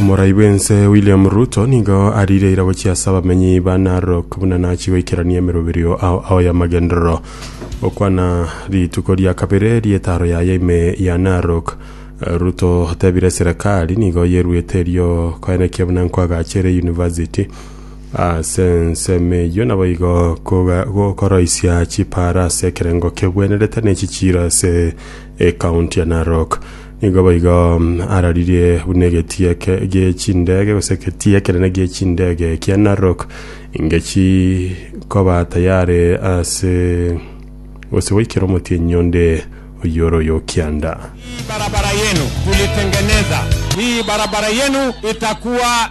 Omorai bw'ense William Ruto nigo arire ira gochia ase abamenyi ba Narok buna nachi goikerania emeroberio ao ao y'amagenderero gokwana rituko ria kabere ri'etaro yaye ime ya Narok. Eh, Ruto otebire serikali nigo yeruete erio koenekia buna nkwagachere university Ase ensemo eyio naboigo koga- gokoroisia chipaara ase ekerengo kebwenerete ne echichiiro ase ekaunti ya Narok. Nigo boigo mm, araririe buna egetia ke- gie chindege gose egetia ekenene gie chindege kia Narok ingechi koba tayare ase gose goikera omotienyi onde oyio ore oyo kianda. Hii barabara yenu tulitengeneza, hii barabara yenu itakuwa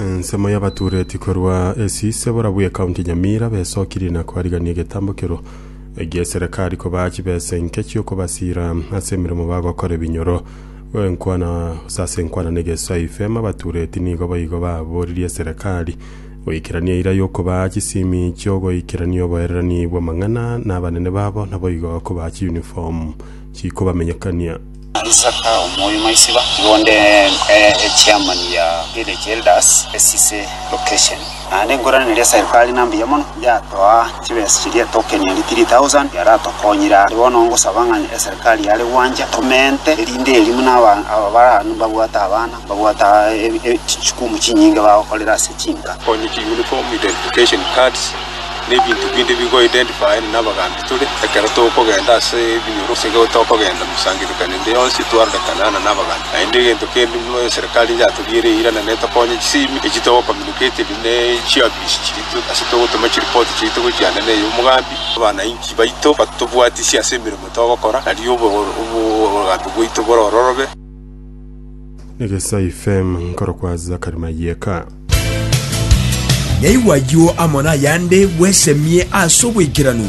ensemo y'abatureti korwa esi sebora bwe kaunti nyamira besokiri na kwarigania egetambo kero egi'eserekari kobaa chibesa enke chi'okobasira ase emeremo bagokora ebinyoro enkwana gose ase enkwana na egeswai fema abatureti nigo boigo baboririe eserekari goikerania eira y'okobaa chisimi chi'ogoikerania oboererani bw'amang'ana na abanene babo naboigo kobaa chiuniform chikobamenyekania Isaka omoyo maisiba, iga onde e chairman ya village elders esise location. Naende enkorana eria serikali na mbuya mono, yatoa chibesa chiria token eria 3000 yaratokonyire aa. Bono ngosaba ng'a eserikali yare gwancha tomente erinde eeri buna aba aba bare aa mbabwate abana. Babwata chikumu chinyinge bagokorera ase chinka. Konyiti, uniform, identification cards, na ebinto binde bigo identifying nabagambi tore ekero tokogenda ase ebinyoro gose ekero tokogenda mosangirikano ende yonsi twarorekana nana nabagambi. Naende egento kende buna eserekari yaturiere eira na netokonya chisimi echi togo communicated ne chiofisi chiria tore ase togotoma chiripoti chiaito gochia ande na ey'omogambi. Abanainchi baito batobwatisie ase emeremo togokora, nario obogambi bwaito bore ororobe. Negesai FM nkorokwa Zakari Mayeka. Naigwa ayio amo nayande bwesemie ase obwaikeranu.